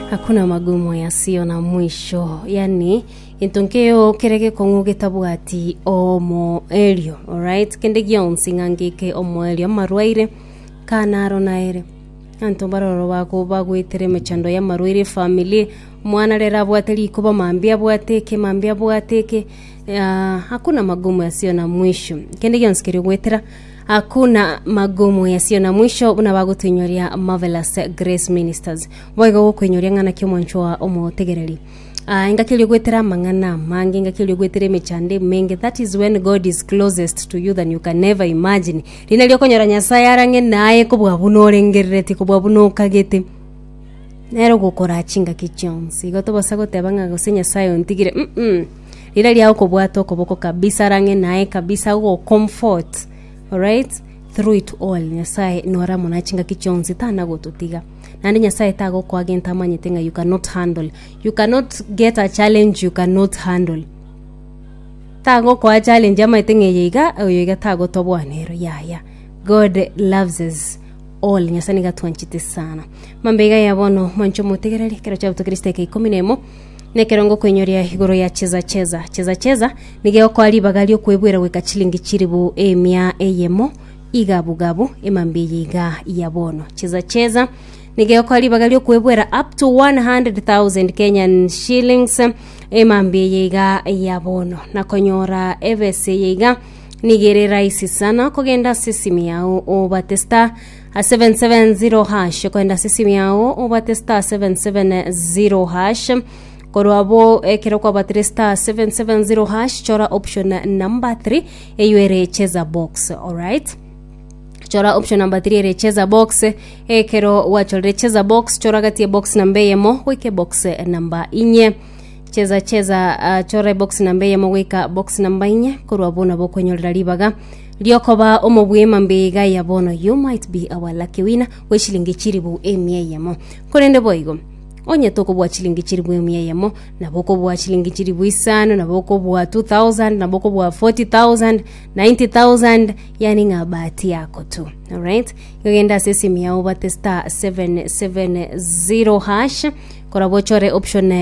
Hakuna magumu yasiyo na mwisho, yani gento nkeo kere gekong'u getabwati omoerio. Alright, kende gionsi ng'a ngeke omoerio, amarwaire, kana aro naere anto baroro bako bagwetere emechando y'amarwaire efamily omwana rero abwate rikoba mambia abwate eke mambia abwate eke ah, hakuna magumu yasiyo na mwisho kende gionsi keria ogwetera Hakuna magumu yasio na mwisho buna bagotuinyoria Marvelous Grace Ministers. Boigo gokoinyoria ng'ana kia omwancho wa omotegereri. Ah, engaki erio gwetera amang'ana amange, engaki erio gwetera emechando emenge. That is when God is closest to you than you can ever imagine. Rinde rio okonyora Nyasaye arang'e naye kobua buna orengerereti, kobua buna okagete. Nero gokoraa chingaki chionsi. Igo tobasa goteba ng'a gose Nyasaye ontigire. Mm-mm. Riire ria okobwata okoboko kabisa arang'e naye kabisa agogo-comfort alright through it all. Nyasaye nore amo nachingaki chionsi tana gototiga. Naende Nyasaye tagokoa gento amanyete ng'a you cannot handle. You cannot get a challenge you cannot handle. Tagokoa challenge amanyete ng'a eye iga, oyo iga tagotoboa nero yaya. God loves us all. Nyasaye nigo atwanchete sana. Mambia iga ya bono mwanche omotegereri, ekero chiabutokeire chidakika ikomi na emo, Nekerongo okoinyoria igoro ya cheza cheza. Cheza cheza nigo egokoa ribaga riokwebwera goika chilingi chilifu emia eyemo igabu gabu emambia eye iga ya bono. Cheza cheza nigo egokoa ribaga riokwebwera up to 100,000 Kenyan shillings emambia eye iga ya bono. Nakonyora ebesa eye iga nigo ere rahisi sana okogenda ase esimi yao obate star A 770 hash kogenda ase esimi yao obwate star 770 hash korwa abwo ekero kwabatire star 770 hash chora option number 3 eywo ere cheza box alright chora option number 3 ere cheza box ekero gwachorire cheza box chora gati ya box namba eyemo goika box namba inye cheza cheza uh, chora box namba eyemo goika box namba inye korwa abwo nabo okwenyorera ribaga Riokoba omobwema mbiiga ya bono you might be our lucky winner bw'eshilingi chilibu emia eyemo. Korende boigo, onye tokobua chilingi chilibu emia eyemo, nabo okobua chilingi chilibu isano, nabo okobua 2000, nabo okobua 40000, 90000, yani ng'a bahati yako tu. Alright? Igo genda ase esimu yao obate star 770 hash, korwa bochore option